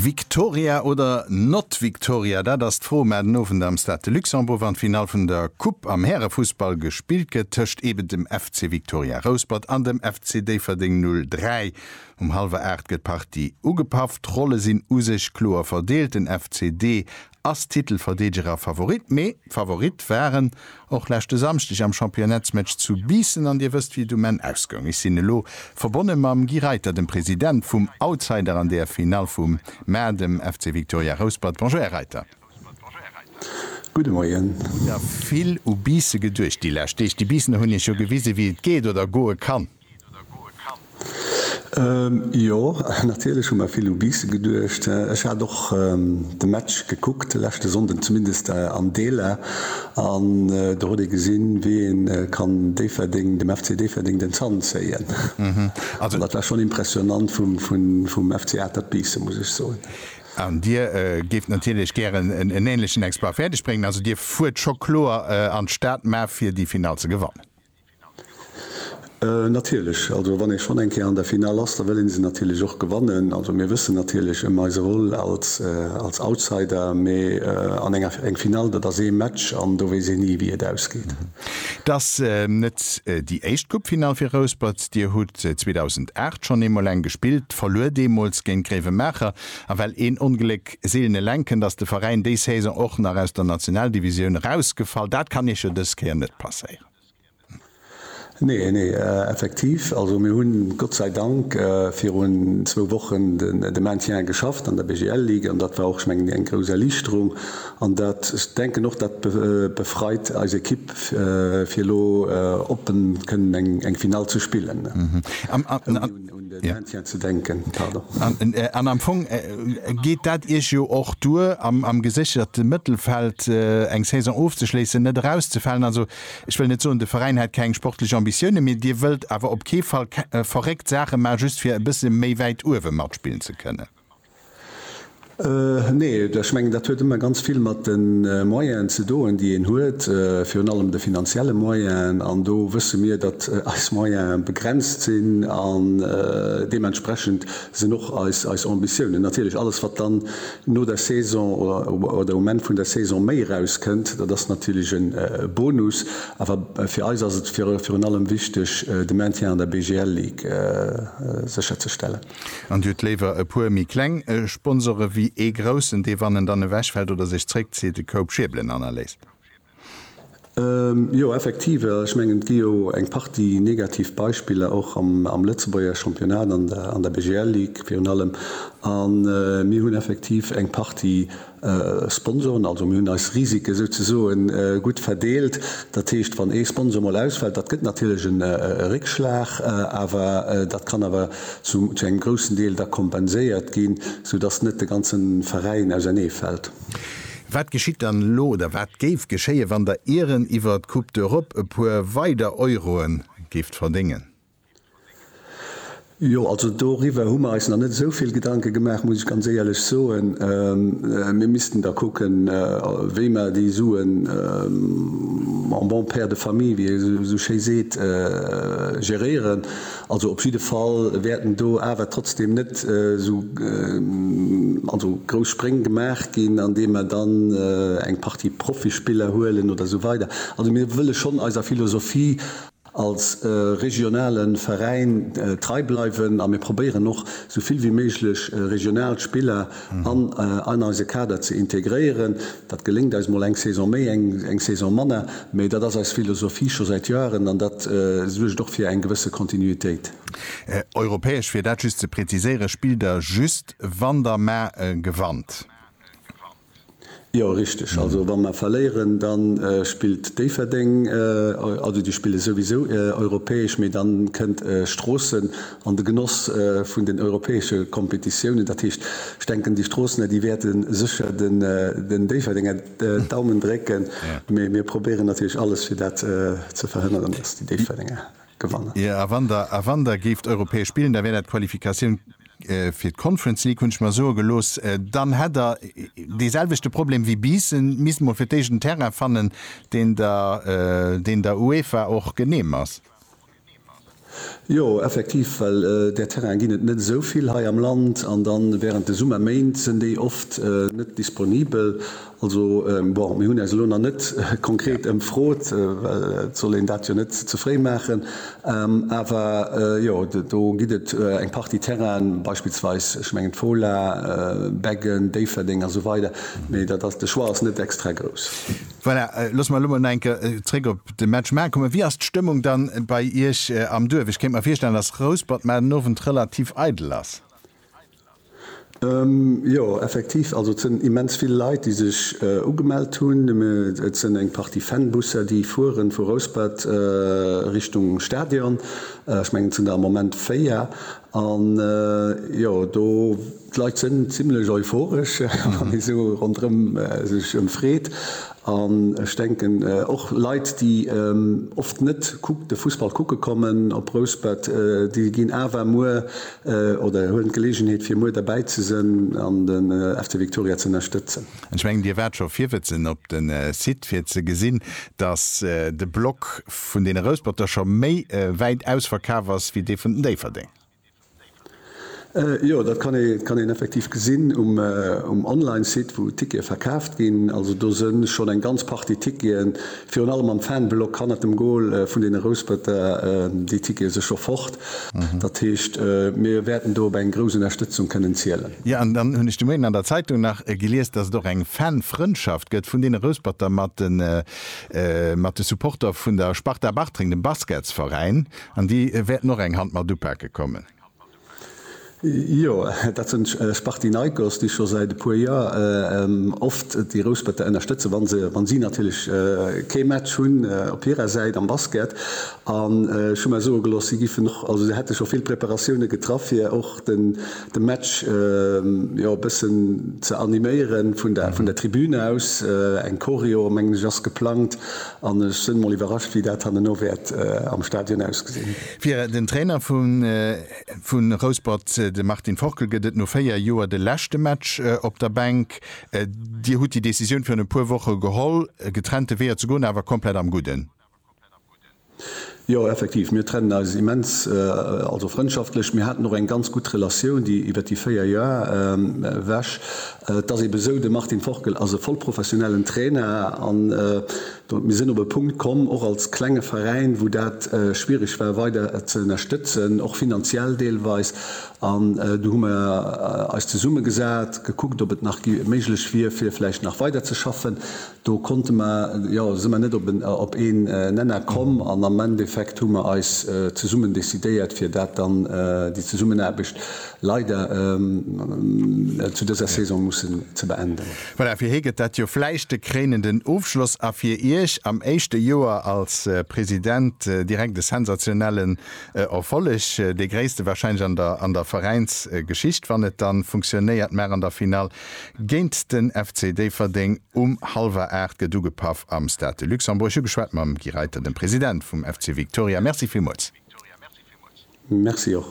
Victoria oder not Victoria, dat ass d'Fro. Mä den Owend am Stade de Luxembourg, wann d'Finall vun der Coupe am Härefussball gespillt gëtt tëscht eben dem FC Victoria Rouspert an dem FC Déifferdeng 03. Um hallwer 8 gëtt d'Partie ugepaff. D'Rolle sinn u sech kloer verdeelt, den FCD ass Titelverdeedeger Favorit, mee Favorit waren och leschte Samschdeg am Championnetsmatch zu Biissen an Dir wësst wéi et um Enn ausgoung. Ech sinn elo verbonne mam Guy Reiter, dem President vum Outsider an der Finall vum Mar, dem FC Victoria Rouspert. Bonjour Här Reiter. Gudde Moien. Hutt Der vill u Biisse geduecht déi lescht Deeg? Déi Biissener hunn Iech jo gewise wéi et geet oder goe kann. Jo, natierlech hu mer vill u Biisse geduecht. Ech hat och de Match gekuckt leschte Sonnden, zumindest an Deeler. An do huet ee gesinn, wéi een kann Déifferdeng, dem FC Déifferdeng den Zant zéien. Also dat war schonn impressionnant vum FC Atert Biisse, muss ech soen. An Dir géift natierlech gären en änlechen Exploit fäerdeg bréngen. Also Dir fuert scho kloer an d'Stad, mä fir déi Finall ze gewannen? Natierlech, also wann ee schonn eng Kéier an der Finall ass, da wëll ee se natierlech och gewannen. Also mir wëssen natierlech ëm eise Rôle als als Outsider, mee an enger eng Finall, dat ass ee Match an do weess een ni, wéi et ausgeet. Et ass net déi éischt Coupefinall fir Rouspert. Dir hutt 2008 schonn eemol eng gespillt, verluer deemools géint Gréiwemaacher. A well een Ongléck seelen eleng kënnt, ass de Veräin déi Saison och nach aus der Nationaldivisioun erausgefall. Dat kann Iech jo dës Kéier net passéieren. Nee, nee, effektiv. Also mir hunn, Gott sei Dank, virun zwou Wochen de Maintien geschafft an der BGL-Ligue an dat war och, ech mengen, eng grouss Erliichterung. An dat, ech denken och, dat befreit eis Ekipp, fir elo oppen kënnen eng Finall ze spillen. An am Fong geet dat Iech jo och duer, am gesécherten Mëttelfeld eng Saison ofzeschléissen, net erauszefalen. Also ech wëll net soen, de Veräin hätt keng sportlech Ambitiounen, mee Dir wëllt awer op kee Fall verréckt Saache maachen, just fir e bësse méi wäit uewe matspillen ze kënnen. Nee, ech mengen dat huet ëmmer ganz vill mat de Moyenen ze doen, déi een huet, virun allem de finanzielle Moyenen. An do wësse mir, datt eis Moyene begrenzt sinn an deementsprechend sinn och eis Ambitiounen. Natierlech, alles wat dann no der Saison oder um Enn vun der Saison méi erauskënnt, dat ass natierlech e Bonus. Awer fir eis ass et virun allem wichteg, de Maintien an der BGL-Ligue sécherzestellen. An Dir hutt léiwer e puer méi kleng Sponsore wéi ee groussen, dee wann en dann ewechfält oder sech zréckzitt, de Koup schiebelen hannerléisst? Jo, effektiv. Ech mengen, et gi jo eng Partie negativ Beispiller och am Lëtzebuerger Championnat, an der BGL-Ligue virun allem. A mir hunn effektiv eng Partie Sponsoren, also mir hunn eis Risike souzesoe gutt verdeelt. Dat heescht, wann ee Sponsor mol ausfält, dat gëtt natierlech e Réckschlag, awer dat kann awer zu engem groussen Deel da kompenséiert ginn, soudass net de ganze Veräin ausernee fält. Wat geschitt dann elo oder wat géif geschéien, wann Der Iren iwwer d'Coupe d'Europe e puer weider Euroe géift verdéngen? Jo, also doriwwer hu mer eis nach net esou vill Gedanke gemaach, muss ech ganz éierlech soen. Mir missten da kucken, wéi mer déi Suen en bon père de famille, wéi ee esou schéi seet, geréieren. Also op jidde Fall wäerten do awer trotzdeem net esou also grouss Spréng gemaach ginn, andeem mer dann eng Partie Profispiller huelen oder esou weider. Also mir wëlle schonn eiser Philosophie. als regionale Veräin trei bleiwen a mir probéieren och esou vill wéi méiglech regional Spiller an an eise Kader ze integréieren. Dat geléngt eis mol eng Saison méi, eng Saison manner, mee dat ass eis Philosophie scho säit Joeren an dat suergt och fir eng gewësse Kontinuitéit. Europäesch, fir dat just ze präziséieren, spillt Der just, wann Der Maer gewannt? Jo richteg, also wa mer verléieren da spillt Déifferdeng, also déi spille souwisou europäesch, mee da kënnt Stroossen an de Genoss vun den europäesche Kompetitiounen. Dat heescht ech denken déi Stroossener déi wäerte sécher den Déifferdenger d'Daumen drécken, mee mir probéieren natierlech alles fir dat ze verhënneren, datt déi Déifferdenger. gewannen. A wann Der, a wann Der géift europäesch spillen, da wär dat d'Qualifikatioun fir d'Conference League, hunn ech mer soe gelooss, dann hätt Der dee selwechte Problem wéi Biissen, misst mol fir d'éischt en Terrain fannen, deen der, deen der UEFA och genehm ass. Jo, effektiv, well där Terrainen ginn et net esou vill hei am Land, an da während de Summerméint sinn déi oft net disponibel. Also, bon, mir hunn eis elo nach net konkret ëmfrot, well et soll een dat jo net ze fréi maachen. Awer jo, do gëtt et eng Partie Terrainen, beispillsweis, ech mengen d'Fola, Beggen, Déifferdeng a sou weider, mee dat ass, de Choix ass net extra grouss. Voilà, loosse mer elo mol nach eng Kéier zréck op de Match Maarn kommen. Wéi ass d'Stëmmung dann bei Iech am Duerf? Ech kéint mer virstellen, dass Rouspert maart den Owend relativ eidel ass. Jo, effektiv. Also et sinn immens vill Leit, déi sech ugemellt hunn. Et sinn eng Partie Fanbusser, déi fueren, vu Rouspert Richtung Stadion. Ech mengen, et sinn der am Moment véier. An jo, do, d'Leit sinn zimlech euphoresch, wann ee sou ronderëm sech ëmfreet. An ech denken, och Leit, déi oft net de Fussball kucke kommen op Rouspert, déi ginn awer muer oder hunn d'Geleegenheet, fir muer derbäi ze sënn an de FC Viktoria ze ënnerstëtzen. An ech mengen, Dir waart scho virwëtzen op de Site, fir ze gesinn, dass de Block vun deene Rousperter scho méi wäit ausverkaf ass wéi dee vun den Déifferdénger. Jo, dat kann ee kann een effektiv gesinn um um Online-Site, wou d'Tickete verkaaft ginn. Also do së schonn eng ganz Partie Ticketen, virun allem am Fanblock hannert dem Gol vun deene Rouspëtter, déi Tickete si scho fort. Dat heescht, mir wäerten do op eng grouss Ënnerstëtzung kënnen zielen. Jo, an dann hunn ech de Moien an der Zeitung nach gelies, datt et och eng Fanfrëndschaft gëtt vun deene Rouspëtter mat de mat de Supporter vun der Sparta Bartreng, dem Basketsveräin. An déi wäerten och eng Hand mat upake kommen. Jo, dat sinn d'Spartinaikos, déi scho säit e puer Joer oft déi Rousperte ënnerstëtzen, wa se, wa si natierlech kee Match hunn op hirer Säit am Basket. An ech hu mer soe gelooss, si giffen och, also se hätte scho vill Preparatioune getraff, fir och de Match, jo, e bëssen ze animéieren, vun der Tribün aus. Eng Choreo, mengen ech, ass geplangt. An ech sënn mol iwwerrascht wéi dat hanneno wäert am Stadion ausgesinn. Fir den Trainer vu Rouspert, de Martin Forkel, gëtt et no 4 Joer de leschte Match op der Bänk. Dir hutt déi Decisioun virun e puer Woche geholl, getrennte Weeër ze goen, awer komplett am Gudden. Jo, effektiv, mir trennen eis immens, also frëndschaftlech. Mir haten och eng ganz gutt Relatioun, déi iwwert déi véier Joer ewech. Et ass eebe sou, de Martin Forkel ass e voll professionellen Trainer an mir sinn op e Punkt komm, och als klenge Veräin, wou dat schwiereg war weider ze ënnerstëtzen, och finanziell deelweis. An du hu mir eis zesummegesat, gekuckt, ob et nach méiglech wier, fir vläicht nach weiderzeschaffen. Do konnte mer, jo, si mer net op een Nenner komm an am Endeffekt hu mer eis zesummen decidéiert, fir dat dann, déi Zesummenaarbecht leider zu dëser Saison mussen ze beenden. Voilà, fir hie gëtt dat jo vläicht de kréinenden Ofschloss a fir Iech am éischte Joer als President direkt e sensationellen Erfolleg, dee gréisste warscheinlech an der Veräinsgeschicht, wann et da funktionéiert, mar an der Finall Géint den FC Déifferdeng um hallwer 8 gëtt ugepaff am Stade de Luxembourg. Ech hu geschwat mam Guy Reiter, dem President vum FC Victoria. Merci villmools. Merci och.